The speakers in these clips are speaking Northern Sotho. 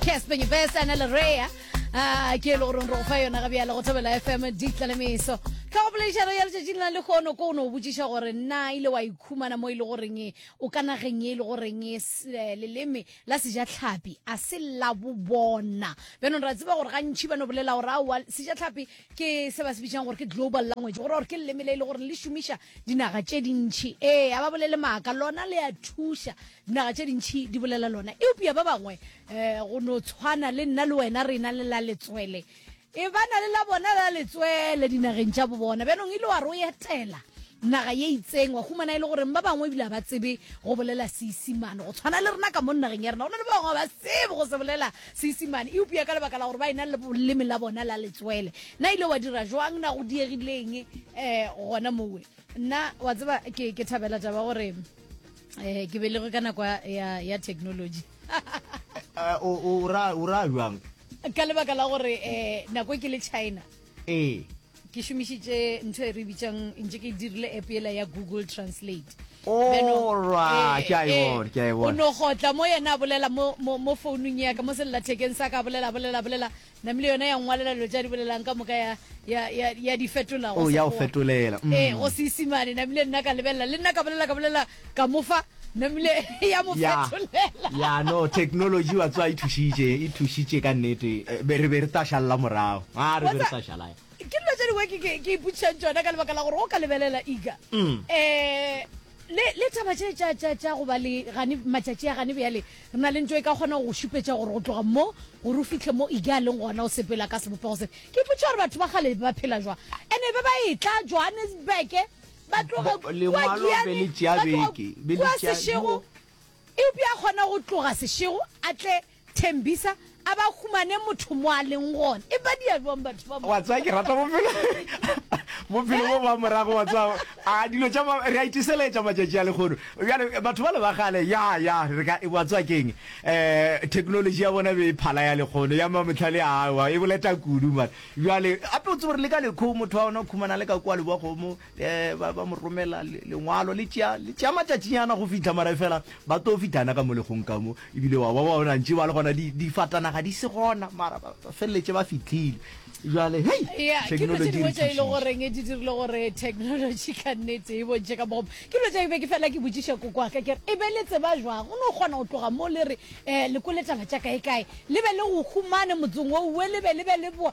Casper Nyebesa na le Rea a ke le gore re go fa yona ga bjale go thobela FM di tlalemeso ka go bolešaro ya letšatši le na le kgono ko o ne o botšiša gore na ile wa ikhumana mo e le goreng o ka nageng e le goreng e s- eh, leleme la sejatlhapi a se la bobona bjanong ra tseba gore gantšhi ba no bolela gore aowa sejatlhapi ke se ba se bitšang gore ke global language gore gore ke leleme le e le gore le šomiša dinaga tše dintšhi ee a ba bolele maaka lona le a thuša Dinaga tše dintši di bolela lona, eupša ba bangwe, eh, go no tshwana le nna le wena, re na le la letswele. E ba na le la bona la letswele dinageng tša bobona. Bjanong ile wa re o etela naga ye itseng, wa humana e le goreng ba bangwe ebile ga ba tsebe go bolela Seisimane. Go tshwana le rena ka mo nageng ya rena, go na le ba bangwe ga ba tsebe go se bolela Seisimane, eupša ka lebaka la gore ba e na le boleme la bona la letswele. Na ile wa dira jwang? Na go diegileng eh, gona mowe? nna wa tseba ke, ke thabela taba gore eh, ke belegwe ka nako ya, ya technology eh, o ra jwang ka lebaka la gore eh, nako ke le china ee ke šomišitše ntho e re bitsang ntse ke dirile app ela ya google translate oh, eh, eh, o no gotla mo yena a bolela mo founung yaka mo sellathekeng sa ka bolela bolela bolela Namile yona ya ngwalela dilo tša di bolelang ka moka ya, ya, ya, ya di fetola go Oh, ya o Sekgowa. fetolela. Mm. Ee, go Seisimane. Namile nna ka lebelela, le nna ka bolela, ka bolela, ka mo fa. Namile ya mo Ya, fetolela. ya no, technology wa tswa e thušitše, e thušitše ka nnete. Eh, be- Re be re tla šalela morago. Ah, re Wa be re tsa- tla šala, ya. ke dilo tše dingwe ke- ke ke ipotšišang tšona ka lebaka la gore o ka lebelela ika Mm. um le le taba tše tša tša tša go ba le gane matšatši a gane bjale Re na le ntwa e ka kgonago go šupetša gore go tloga mo gore o fihle mo Ige a leng gona o sepela ka sebopego se. Ke ipotša gore batho ba kgale ba phela jwang. And e be ba etla Johannesburg, ba tloga Bo- kua lengwalo be Giyane, le tšea ba tloga beke, be le kua tšea- Seshego. Eupša a kgona go tloga Seshego a tle Tembisa A ba humane motho mo a leng gona. E badia bjang batho ba mo. Wa tsaya ke rata bophelo. Bophelo bo ba morago wa tsaya. A dilo tša re a itiseletša matšatši a lekgono. Bjale batho ba le ba gale ya ya re ka e wa tsaya keng. Eh technology ya bona be e phala ya lekgono ya mamotlhale a wa e boleta kudu mara. Bjale gape o tsebe re le ka lekho motho wa ona o khumana le ka kwa le bwa kgomo. ba ba mo romela lengwalo le tšea le tšea matšatšinyana go fihla mara fela ba tlo fitana ka mo legong ka mo ebile wa ba ba bona ntše ba le gona di di fatana ga di se gona mara ba feleletse ba fitlhile jwale hey yeah technology ke tšile go reng e di dirile gore technology ka nnete e bontše ka mo ke lo tšile be ke fela ke botšiša koko ka ke e be le tseba jwa go no gona go tloga mo le re eh le kole taba tša kae kae le be le go humane motseng o we le be le be le boa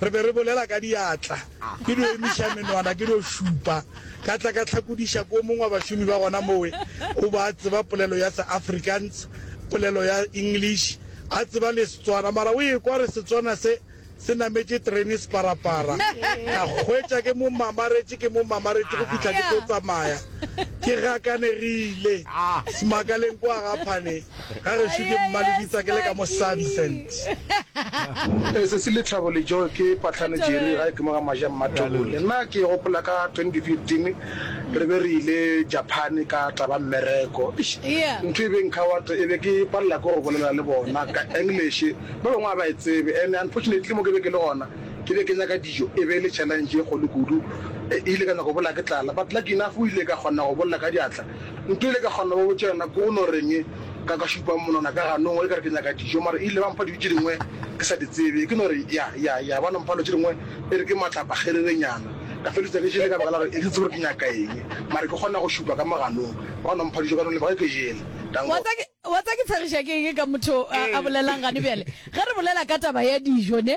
Re be re bolela ka diatla, ke dio emiša menwana, ke dio šupa. Ka tla ka hlakodiša ko mongwe wa bašomi ba gona mowe, o be a tseba polelo ya se-Afrikaans, polelo ya English, a tseba le Setswana. Mara o ekwa re Setswana se, se nametše terene separapara. Ka hwetša ke mo mamaretše, ke mo mamaretše go fihla ke tlo tsamaya. Ke gakanegile, Smakaleng kwa ga Phane. Ga gešo ke mmalebitsa ke le ka mo sabi sent. Sesi Lethabo Lejo ke patlhane Jerry ga e ke mo ga Maja Mmathoole. Nna ke gopola ka 2015 re be re ile Japan ka taba mmereko. Eish ntho e be nkhawat e be ke palela ke go bolela le bona ka English ba bangwe a ba e tsebe and unfortunately mo ke be ke le gona ke be ke nyaka dijo e be e le challenge e kgolo kudu. E ile ka nyaka go bolela ke tlala but lucky enough o ile ka kgona go bolela ka diatla Nkile ka kgona go botša yena ko go no reng ka ka šupa monwana ka ganong e kare ke nyaka dijo mara ile ba mpha dijo tše dingwe ke sa di tsebe ke no re ya ya ya ba no mpha dilo tše dingwe e re ke matlapa kgererenyana ka feleletša ke jele ka baka la gore e ke tsebe gore ke nyaka eng mara ke kgona go šupa ka mo ganong ba no mpha dijo ka no lebaka ke jele thank wa God. tsa ke wa tsa ke tshegiša ke eng ka motho a a bolelang gane bjale ge re bolela ka taba ya dijo ne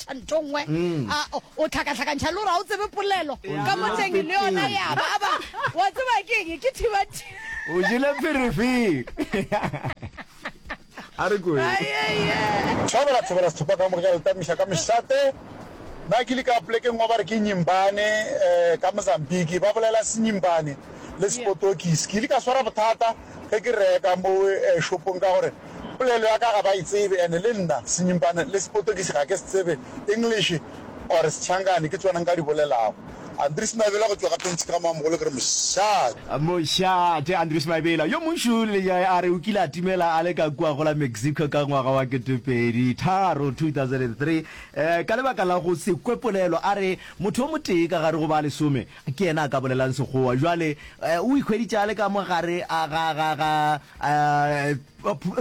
tša ntho nngwe a o- o hlakahlakantšha le gore ga o tsebe polelo ka mo teng le yona ya ba ba wa tseba keng ke thibati o jele pherefere a re koe tlhabela thobela sethopa ka moka le tamiša ka mešate na ke le ka polekeng wa ba re ke nyimbane um ka mozambique ba bolela senyimbane le sepotokis ke ile ka swara bothata ge ke reka mo eh, shopong ka gore Polelo ya ka ga ba e tsebe and le nna Senyimpane le Sepotokisi ga ke se tsebe, English or Sechangane ke tsona nka di bolelago. Andries Mabela go tšwa ka Pentšhe ka Moamogolo ke re mošate. Mošate Andries Mabela yo mošu Lejai a re o kile a timela a le ka kua go la Mexico ka ngwaga wa ketepedi tharo, 2003, ka lebaka la go se kwe polelo a re motho o motee ka gare go ba lesome Ke yena a ka bolelang Sekgowa. Bjale o ikhweditše a le ka mo gare ga, ga, ga, ga,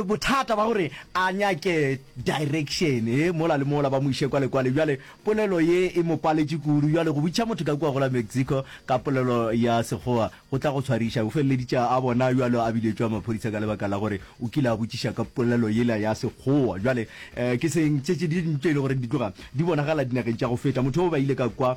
bothata ba gore a nyake direction e mola le mola, ba mo iše kwa le kwale. Bjale polelo ye e mo paletše kudu. Bjale go botšiša motho ka kua go la Mexico ka polelo ya Sekgowa go tla go tshwariša. O feleleditše a bona bjalo a biletšwa maphodisa ka lebaka la gore o kile a botšiša ka polelo yela ya Sekgowa. Bjale ke seng tše tše dintši tše e le goreng di tloga di bonagala dinageng tša go feta. Motho o ba ile ka kwa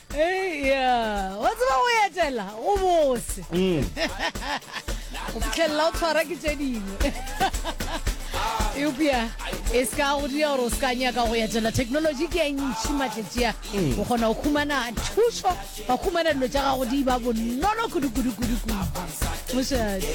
Eya, wa tseba go etela go bose mm. go fitlhelela o tshwara ke tse dingwe eupša e se ka go dira gore o se ka nyaka go etela technology ke e ntšhi matletšea mm. o kgona go khumana thušo wa khumana dilo tša gago di ba bonolo kudukudukudukudu mošadi